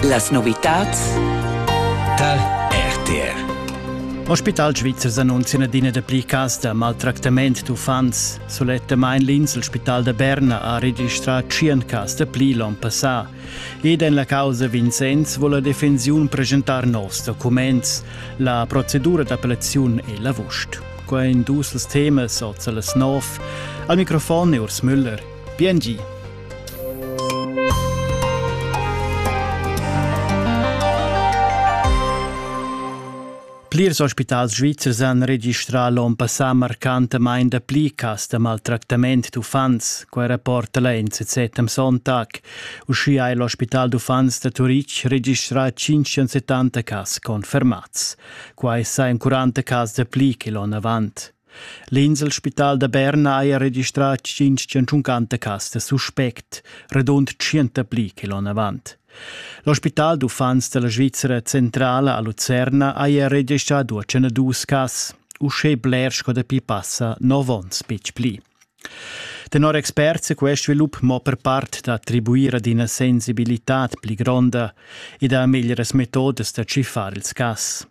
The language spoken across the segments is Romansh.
Las novitads tar RTR. Ospital svizzer annunzia adina da pli cas da maltractament d'uffants. Sulettamain l'insel Spital da Berna ha registrà 100 cas da pli l'onn passà. Ed en la causa Vincenz vuole la defensiun presentar novs documents. La procedura d'appellaziun è l'avust. Qua in dus temas oza las nov. Al microfon è Urs Müller. Bien gi! Plirs ospitals svizzers han registrà l'onn passà marcantamain dapli cas da maltractament d'uffants, quai rapporta la NZZ am Sonntag. Uschia è l'ospital d'uffants da Turitg registrà 570 cas confermads. Quai sajan 40 cas dapli che l'onn avant. L'inselspital da Berna haja registrà tschintg tschuncancas suspect, radund tschient pli che l'onn avant. L'ospital d'uffants da la Svizra Centrala a Lucerna haja registrà duas cas, uschè bler sco dapi passa nov onns betg pli. Tenor experts è quest svilup mo per part d'attribuir ad ina sensibilitad pli gronda ed a meglieras metodas da tschiffar ils cas.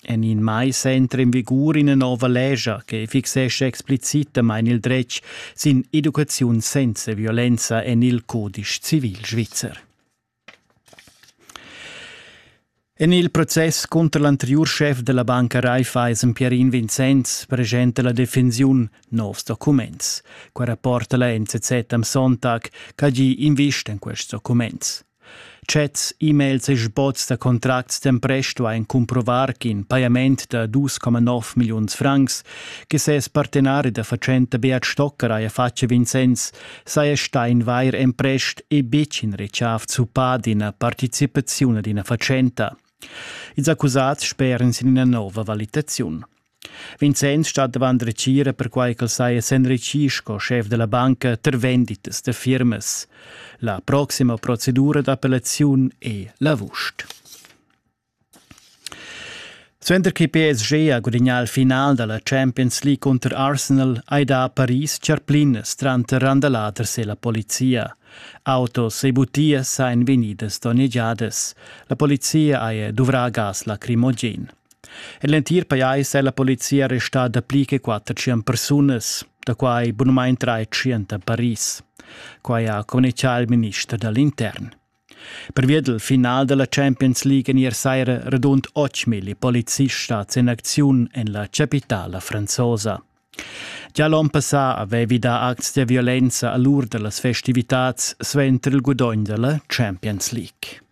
En in mais entra in vigur ina nova lescha che fixescha explicitamain il dretg sin educaziun senza violenza en il codice civil svizzer. En il process cunter l'anteriur chef della banca Raiffeisen Pierin Vincenz presenta la defensiun novs documents. Qua rapporta la NZZ am Sonntag, che ha invist en quests documents. Chats, e-mails e sboz da contracts d'empresto ein cumprovar ch'in pajament da 2,9 milliuns francs che ses partenari da fatschenta Beat Stocker haja fatg a Vincenz saja stà in vair emprest e betg in retschaf zuppà d'ina participaziun ad ina fatschenta. Ils accusats sperien sin ina nova valitaziun. Vincenz stat davant retgira perquai ch'el saja s'enritgì sco schef da la banca tar venditas da firmas. La proxima procedura d'appellaziun è l'avust. Suenter che PSG ha gudagnà il final da la Champions League cunter Arsenal hai dà a Paris charplinas tranter randaladers e la polizia. Autos e butias sajan vegnidas donnegiadas. La polizia haja duvrà gas lacrimogen. En l'entir pajais è la polizia restà dapli che quatter tschient persunas, da quai bunamain trais tschient a Paris. Quai ha communitgà il minister da l'intern. Pervia dal final da la Champions League en ier saira radund 8.000 polizists stads en acziun en la chapitala franzosa. Già l'onn passà avevi dà acts da violenza a l'ur da las festivitads suenter il gudogn da la Champions League.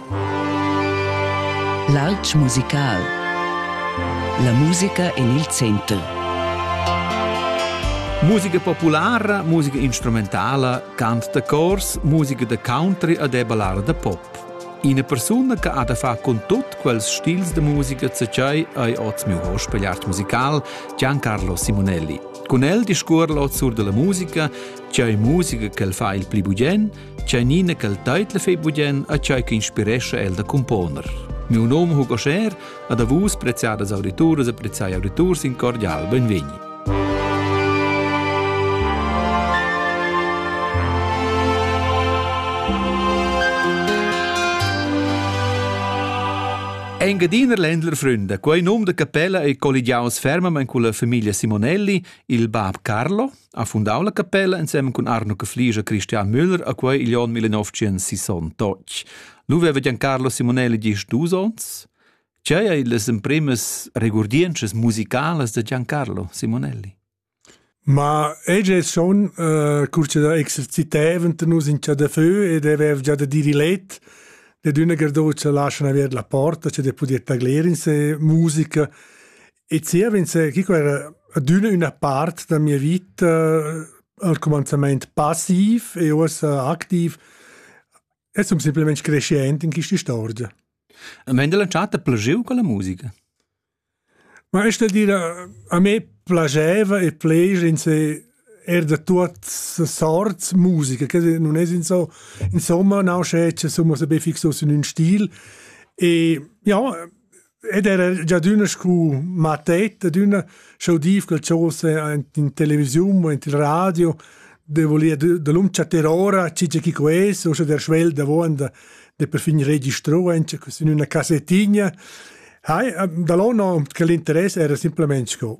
L'alp musical. La musica en il center. Musica populara, musica instrumentala, cant da cors, musica da country ed è ballada da pop. Ina persuna che ha da far con tut quels stils de musica tschai hai oz miu hochspielart musical Giancarlo Simonelli. Con el discuor l'oz sur della musica, tschai musica che el fa il pli bugen, Tschernina ch'el teitla fei budien a tschai che inspirescha el da componer. Miu nome Hugo Scher, ad a vus preziadas audituras e preziai auditurs in cordial benvegni. Engadiner Ländler Fründe, quei num de capella ei colligiaus fermament con la famiglia Simonelli, il bab Carlo, Ha fundau la capella ensem cun Arno Cafliger Christian Müller a quei igl onn 1968. Nu veva Giancarlo Simonelli gist dus onns? Tgei ei las emprimas regurdientschas musicalas da Giancarlo Simonelli? Ma eg è schon uh, curce da exerciteven nus in da feu ed avev già da dire let de d'una gardocia lascian aver la porta cioè de poder taglier in se musica E zievens, Chico era adüna üna part da mia vita al cumanzamaint passiv e uossa activ e sun simplamaing crescient in quista istorgia. A me della chatta plagieu con la musica? Ma esta dire, a me piaceva e piace in se er da tuot sorts musica, che non es in so, insomma, nausce, somma, se be fixos in un stil. E ja, ed era già d'una scu mattet ed una schau dir quel chose in televisiun o in il radio de volia de l'um chattar ora chi chi ques o sche der schwel da vonda de per fin registro enche in una cassettigna hai da l'on che l'interesse era simplemente sco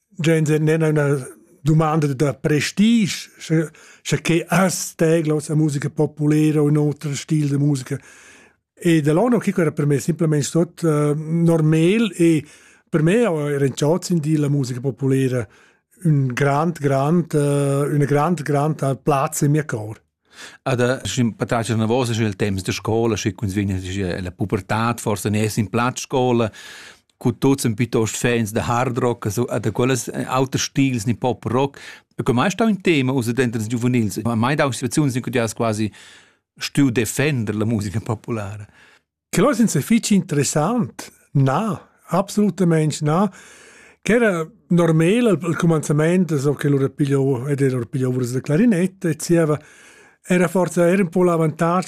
Gens nen una domanda da prestige, sche, sche che as tegla sa musica populera o in otra stil de musica. E da l'anno che era per me semplicemente tot uh, normal e per me era in ciot sin di la musica populera un grand, grand, uh, una grand, grand platz in mio cor. Ad sch'in patratg navos sche il temps da scola, sche cuns vegn la pubertad forsa nes in plaz scola, cu tuts ein piuttost fans da hard rock, also da quellas auters stils, ni pop rock. E come mai stau in tema usa denter ils giuvenils? Mai dau situaziuns in cui ti has quasi stuiu defender la musica populara. Quel es ün fich interessant. Na, absolutamaing na. Ch'era normal al cumanzamaint, so che lura pigliou ed era pigliou urs da clarinetta e zieva era forsa era ün po l'avantatg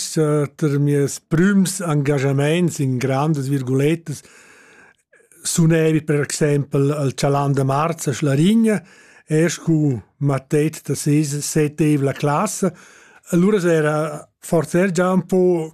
ter mieus prüms engagamaints in grandas virgulettas sunevi per exaimpel al Chalan da Marz a Schlarigna, er scu mattet da ses settev la classa, allura s'era forsa er già un po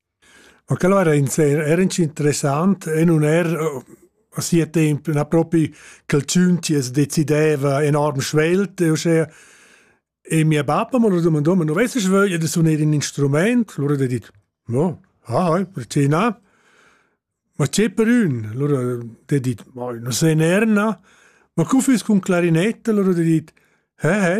Ma quel era inser era interessant e nun era a sia temp na propi ch'el tschun chi as decideva enorm svelt e uschea. E mia bappa m'ha lura dumandà, ma nu vessast vöglia da suner ün instrumaint? Lura d'he dit, no, ah, perché na? Ma che per ün? Lura d'he dit, ma nu se ner, na. Ma cu füss cun clarinetta? Lura d'he dit, he, he.